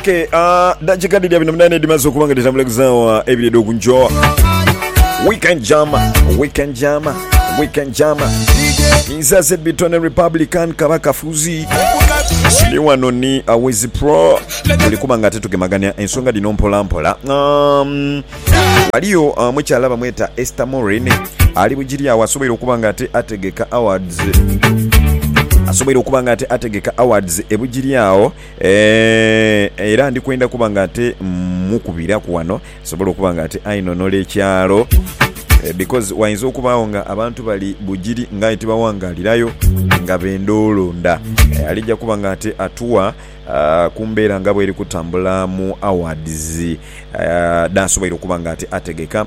Okay, uh, dakika dhiri abiri na munaana edhimaze okuba nga dhitambula ku zaawa ebiri edh'oku nkyo weekend jam weekend jam weekend jam nzaze bitone republican kaba kafuzi ndi wano ni awezi pro tuli kuba nga ate tugemagania ensonga dhino mpola mpola um, waliyo uh, mukyala bamweta esther morin ali bugiri awo asoboire okuba nga ate ategeka awards asoboire okuba nga ate ategeka awards ebugiri awo Eeh, era ndi kwendha kuba nga ate mmukubiraku wano nsobole okuba nga ate ainonola ekyalo because wainza okubaagho nga abantu bali Bugiri nga aye tibawangaalirayo nga benda olonda alija kuba nga ate atuwa ku mbeera nga bweri kutambula mu awards dh'asoboire okuba nga ate ategeka.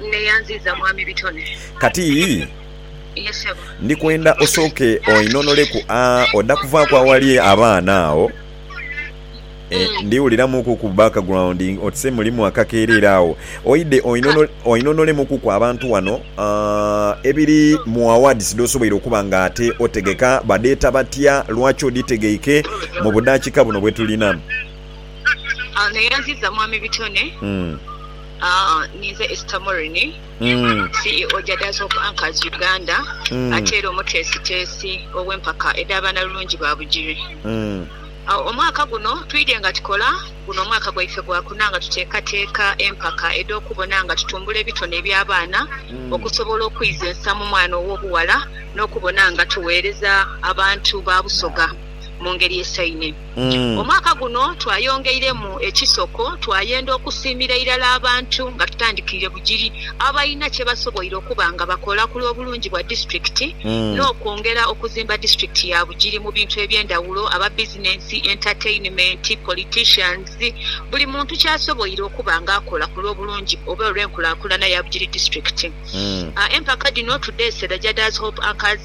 Nneeyanziiza mwami bitone. Kati Ye ssebo. ndi kwenda osooke oinhonoleku a oda kuvaaku awali abaana agho. E, Mm. ndi wuliramuku ku background oti se mulimu akakeerere agho. Oidhe oinhono, oinhonolemukuku abantu ghano a ebiri mu awards dh'osoboire okuba nga ate otegeka, badheeta batya, lwaki odhitegeike, mu budhaakika buno bwe tulinamu. Ah, Nneeyanziiza mwami bitone. Mm. Ninze Esther Murini, CEO gya Days of Anchors Uganda ate era omuteesiteesi ow'empaka edha Banalulungi ba Bugiri. Omwaka guno twidhye nga tukola, guno omwaka gwaife gwakuna nga tuteekateeka empaka edh'okubona nga tutumbula ebitone eby'abaana okusobola okwiza ensa mu mwana ow'obughala n'okubona nga tugheereza abantu ba Busoga mu ngeri esaine. Omwaka guno twayongeiremu ekisoko, twayenda okusiimira irala abantu nga tutandikirire Bugiri abalina kye basoboire okuba nga bakola ku lw'obulungi bwa disitulikiti n'okwongera okuzimba disitulikiti ya Bugiri mu bintu eby'endhawulo, aba bizinensi, entertainment, politicians, buli muntu ky'asoboire okuba nga akola ku lw'obulungi oba olw'enkulakulana ya Bugiri disitulikiti. Empaka dhino tudheese Rajada's Hope Anchors.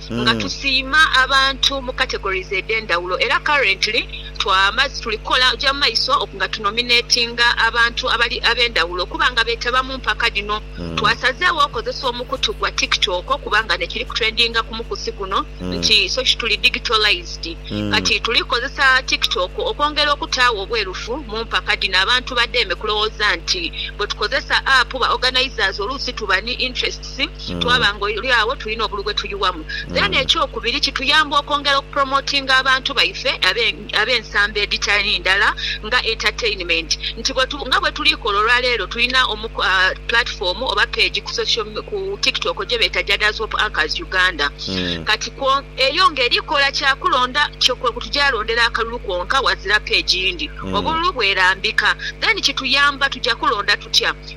Nga tusiima abantu mu categories edhendhawulo era currently tuli kukola kugya mu maiso nga tu nominatinga abantu abali abendhawulo okuba nga betaba mu mpaka dhino. Twasazegho okozesa omukutu gwa TikTok kuba nga nekiri ku trendinga ku mukusi guno nti soki tuli digitalised. Kati tuli kukozesa TikTok okwongera okutaagho obwerufu mu mpaka dhino abantu badheeme kulowooza nti bwetukozesa app ba organisers oluusi tuba ni interests twaba nga oli agho tulina obulu bwe tuyughamu. Then ekyokubiri kituyamba okwongera okupromotinga abantu baife abe ab'ensamba edhitali ndala nga entertainment nti bwe tu nga bwe tuli kola olwa leero tulina omu platform oba page ku social ku TikTok gye beeta Jada's Hope Anchors Uganda kati kwo eyo nga eri kola kya kulonda kyo kwe kutugya londera akalulu kwonka wazira page yindi obululu bwerambika then kituyamba tugya kulonda tutya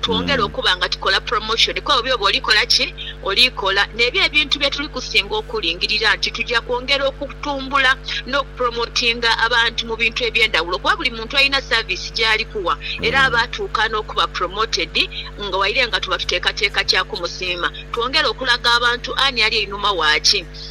twongere okuba nga tukola promotion kwebyo byoba oli kola ki? Oli kola. Nebyo ebintu byetuli kusinga okulingirira nti tuja kwongera okutumbula n'oku promotinga abantu mu bintu eby'endhawulo kuba buli muntu alina service gyali kuwa era aba atuuka n'okuba promoted nga waire nga tuba tuteekateeka kya kumusiima. Twongere okulaga abantu ani ali einhuma wa ki?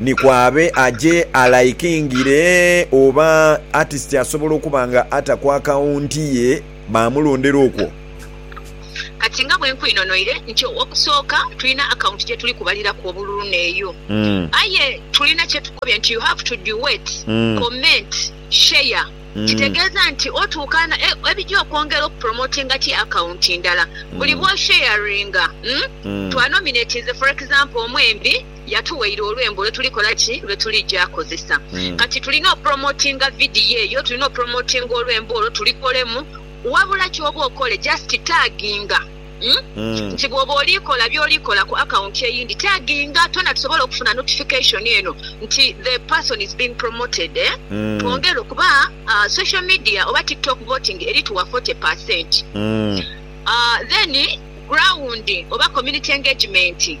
Ni ku abe aje alaikingire oba atisiti asobola okuba nga ata ku akawunti ye baamulondera okwo. Kati nga bwe nkwinonoire nti ow'okusooka tulina akawunti gye tuli kubaliraku obululu n'eyo. Aye tulina kye tukubye nti you have to duet, comment, share. Kitegeeza nti otuukaana ebija okwongera okupromotinga ti akawunti ndala buli bw'osheyaringa. Twanominatinze for example omwembi Yatuweire olwembo lwe tuli kola ki? Lwe tuli ja kozesa. Kati tulina opromotinga vidiyo eyo, tulina opromotinga olwembo olwo, tulikolemu. Wabula kyoba okole just tagginga. Nti bwoba oli kola byoli kola ku akawunti eyindi, tagginga twena tusobole okufuna notification eno nti the person is being promoted. Twongere okuba social media oba TikTok voting eri tuwa forty percent. Then ground oba community engagement.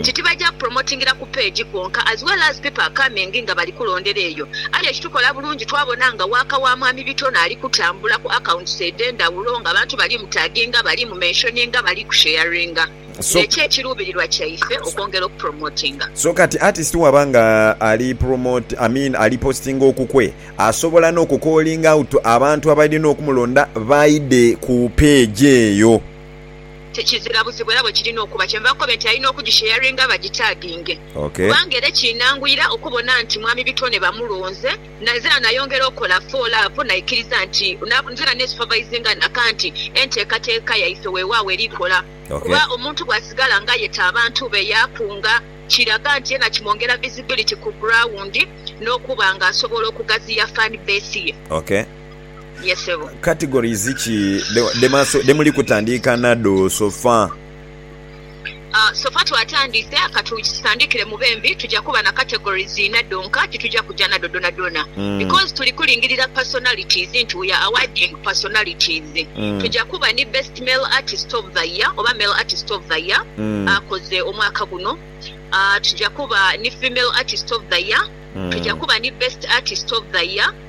nti tibaja promotingira ku page kwonka as well as people are coming nga bali kulondera eyo aye ekitukola bulungi twabona nga waaka wa mwami Bitono ali kutambula ku accounts edhendawulo nga abantu bali mu taginga, bali mu mentioninga, bali ku sharinga ne kye kirubirirwa kyaife okwongera oku promotinga. So kati artist waba nga ali promote I mean ali postinga okukwe asobola no ku calling out abantu abalina okumulonda baide ku page eyo. Tekizira buzibu era bwe kirina okuba, kyenva nkobe nti alina okugisharinga bagitaginge Ok. kubanga era ekinanguyira okubona nti Mwami Bitone bamulonze na nzena nayongera okola follow up naikiriza nti na nzena nesupervisinga naka nti enteekateeka yaife wewaawo eri kola Ok. kuba omuntu bwasigala nga yeta abantu be yakunga kiraga nti yena kimwongera visibility ku ground nokuba nga asobola okugaziya fan base ye. Ok. ye sebo. Categories ki dhe muli kutandiika nado sofa? Sofa twatandiise ka tutandiikire mu bembi tuja kuba na categories ina dhonka ti tuja kuja nado dhonadhona because tuli kulingirira personalities nti we are awarding personalities. Tuja kuba ni best male artist of the year oba male artist of the year akoze omwaka guno, tuja kuba ni female artist of the year, tuja kuba ni best artist of the year.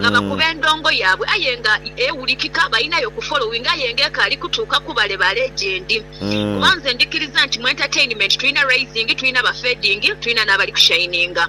nga bakuba endongo yaabwe aye nga ewulikika, balinayo ku following aye nga ekaali kutuuka ku bale bale gyendi kuba nze ndikiriza nti mu entertainment tulina rising, tulina aba fading, tulina n'abali ku shininga.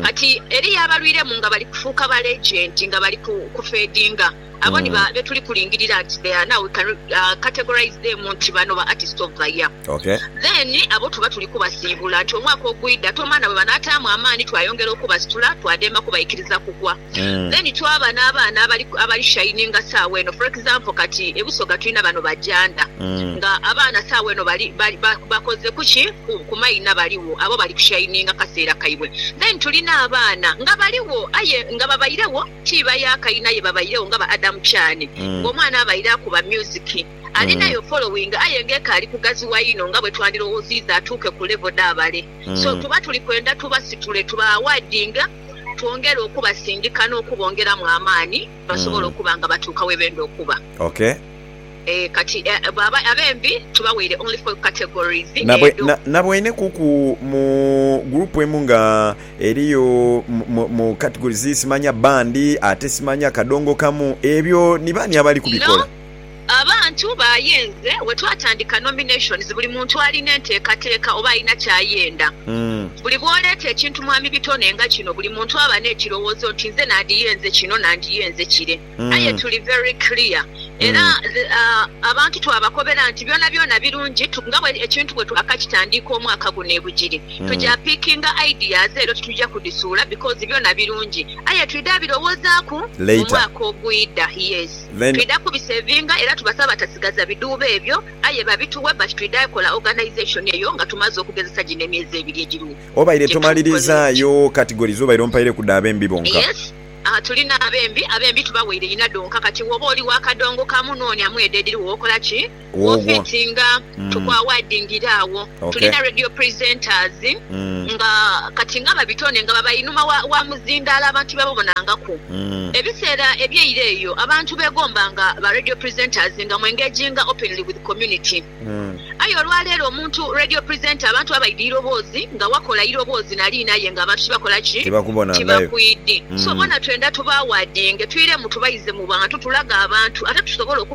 Kati eriyo abalwiremu nga bali kufuuka ba legend nga bali ku fadinga, abo ni betuli kulingirira nti they are now we can categorise them nti bano ba artist of the year. Okay. Then abo tuba tuli kubasiibula nti omwaka ogwidha tomaana bwe banaataamu amaani twayongera okubasitula twademba kubaikiriza kugwa. Then twaba n'abaana abali abali shininga saawa eno for example kati e Busoga tulina bano bajanda nga abaana saawa eno bali bali ba bakoze kuki ku ku maina baligho abo bali kushininga kaseera kaibwe. Then tulina abaana nga baligho aye nga babairegho ti ba yaaka inha ye babairegho nga ba Adam Kyane nga omwana abaire akuba music, Alinayo following aye nga ekaali kughaziwa inho nga bwetwandilowoziiza atuuke ku level dha bale. So tuba tuli kwenda tubasitule tuba awardinge twongere okubasindika n'okubongeramu amaani basobole okuba nga batuuka webenda okuba. Ok. Eeh kati bwaba abembi tubaweire only four categories edho. Naboine kuku mu group emu nga eriyo mu categories simanya band ate simanya kadongo kamu ebyo ni baani abali kubikola? Abantu bayenze wetwatandika nominations buli muntu alina enteekateeka oba alina kyayenda. Buli bwoleeta ekintu Mwami Bitone nga kino buli muntu aba nekirowoozo nti nze nandiyenze kino nandiyenze kire aye tuli very clear era abantu twabakobera nti byona byona birungi nga ekintu bwetwakakitandiika omwaka guno ebugiri tuja pickinga ideas ero tituja kudisuula because byona birungi aye twidha birowozaaku mumwaka ogwidha. Twidha kubisevinga era tubasaba batasigaza bidhuubo ebyo aye babituwe but twidha kola organisation eyo nga tumaze okugezesa gino emyezi ebiri egiri Obaire tomalirizaayo categories obaire ompaireku dha bembi bonka? Yes aah tulina abembi, abembi tubawaire inha dhonka kati woba oli wa kadongo kamu nonia mu edho edhiriwo okola ki? Wofeti nga tukwawadingira agho tulina radio presenters nga kati nga babitone nga baba inhuma wa muzindaalo abantu bebabonangaku. Ebiseera ebyeire eyo abantu begomba nga ba radio presenters nga mu engaginga openly with community aye olwaleero omuntu radio presenter abantu baba baidha iroboozi nga wakola iroboozi naliina aye nga abantu tibakola ki? Tibakwidhi. So bona twendha tubaawadinge twiremu tubaize mu bwantu tulage abantu ate tusobole oku.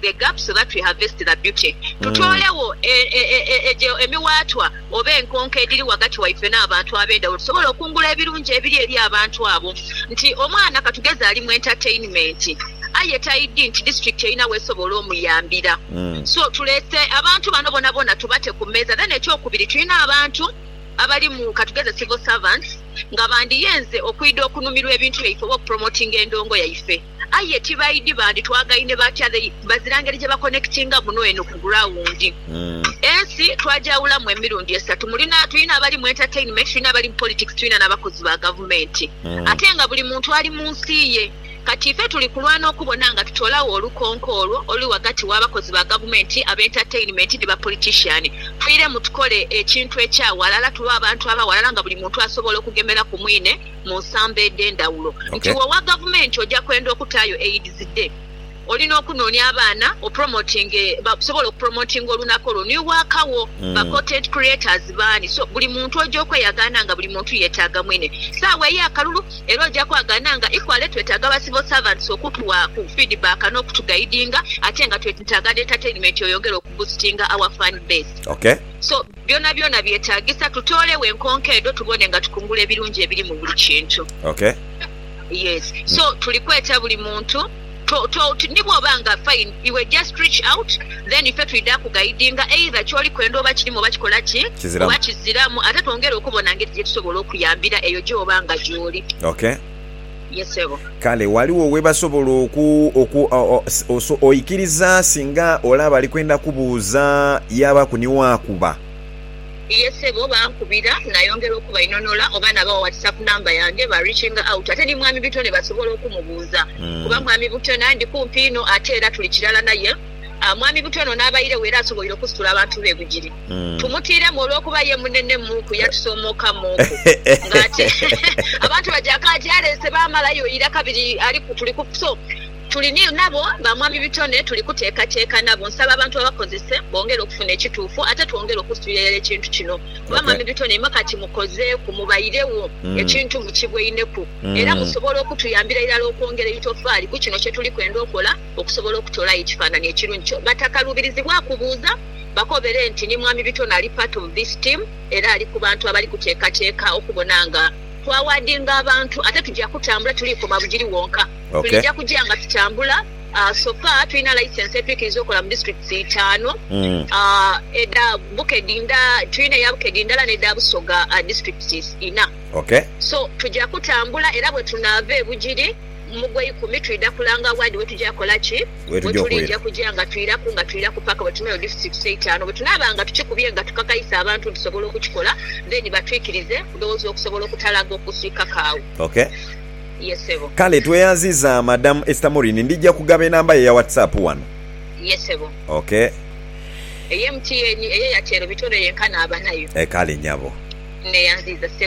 the gap so that we harvest the beauty Tutoolegho egyo emiwaatwa oba enkonko edhiri ghagati waife n'abantu ab'endhawulo tusobole okungula ebirungi ebiri eri abantu abo Nti omwana katugeze ali mu entertainment aye taidhi nti district erina w'esobola omuyambira so tuleese abantu bano bonabona tubate ku meeza Then ekyokubiri tulina abantu abali mu katugeze civil servants nga bandiyeenze okwidha okunumirwa ebintu byaife oba okupromotinga endhoongo yaife. Aye tibaidhi bandi twagaine batya they bazira ngeri gye ba connectinga muno eno ku ground. Ensi twagyawulamu emirundi esatu mulina tulina abali mu entertainment tulina abali mu politics tulina na bakozi ba gavumenti ate nga buli muntu ali mu nsi ye kati ife tuli kulwana okubona nga tutolawo olukonko olwo oluli wagati wa bakozi ba gavumenti, aba entertainment ni ba politician. Twiremu tukole ekintu ekya walala tube abantu aba walala nga buli muntu asobola okugemera ku mwine. mu nsamba edh'endhawulo nti Ok. w'owa gavumenti oja kwenda okutaayo Aids Day, olina okunoonia abaana opromotinge basobola okupromotinga olunaku olwo ni waaka wo. Ba content creators baani? So buli muntu oja okweyagaana nga buli muntu yetaaga mwine. Saawa ey'akalulu era oja kwagaana nga equally twetaaga ba civil servants okutuwa ku feedback n'okutugaidinga ate nga twetntaaga n'entertainment eyongere okubusitinga our fan base. Ok. So. Byonabyona byetaagisa tutooleo enkonko edho tubone nga tukungula ebirungi ebiri mu buli kintu. Okay. Yes. So tuli kweta buli muntu to, to, to, ni bw'oba nga fine iwe just reach out then ife twidha kugaidinga either ky'oli kwenda oba kirimu oba kikola ki, Kiziramu. oba kiziramu ate twongere okubona ngeri gye tusobola okuyambira eyo gy'oba nga gy'oli. Okay. ye ssebo. Kale ghaligho we basobola oku, oku, oso, oikiriza singa olaba ali kwenda kubuuza, yaabaku ni waakuba? Ye ssebo, bankubira, nayongera okubainonola oba nabawa whatsap number yange, ba reaching out. Ate ni Mwami Bitone basobola okumubuuza kuba Mwami Butone ndi kumpi inho ate era tuli kirala naye. Mwami Butone ono abairegho era asoboire okusitula abantu be bugiri. tumutiiremu olw'okuba ye munene mu ku yatusoomokamuuku. Nga ate abantu baja ka gy'aleese baamalayo ira kabiri ali ku tuli ku so tuli ni nabo ba Mwami Bitone tuli kuteekateeka nabo. Nsaba abantu babakozese bongere okufuna ekituufu ate twongere okusitulira irala ekintu kino kuba Mwami Bitone ima kati mukozeeku mubairegho ekintu mukibweineku era musobola okutuyambira irala okwongera eitofaali ku kino kye tuli kwenda okola okusobola okutolayo ekifaananhi ekirungi. Batakaluubirizibwaku buuza. bakobere nti ni Mwami Bitone ali part of this team era ali ku bantu abali kuteekateeka okubona nga twawaadinga abantu ate tuja kutambula tuli koma Bugiri wonka. Tulija kuja nga tutambula, so far tulina licence etwikiriza okola mu districts itaanu edha Bukedi nda tulina eya Bukedi ndala n'edha Busoga districts ina. So tuja kutambula era bwetunaava e Bugiri, Mu gweikumi twidha kulanga ward wetuja kola ki? Wetuliija kuja nga twiraku nga twiraku paka bwetumeyo districts eitanu. Bwetunaaba nga tukikubye nga tukakaisa abantu nti tusobola okukikola then batwikirize kudhoozi okusobola okutalaga okusika kaagho. Ok. Yes sebo. Kale tweyanziza madam Esther Moureen ndija kugaba enamba ye eya WhatsApp wano. Yes sebo. Ok. Eye MTN eye Airtel bitone yenka naaba nayo. Kale nyabo. Neyanziza sebo.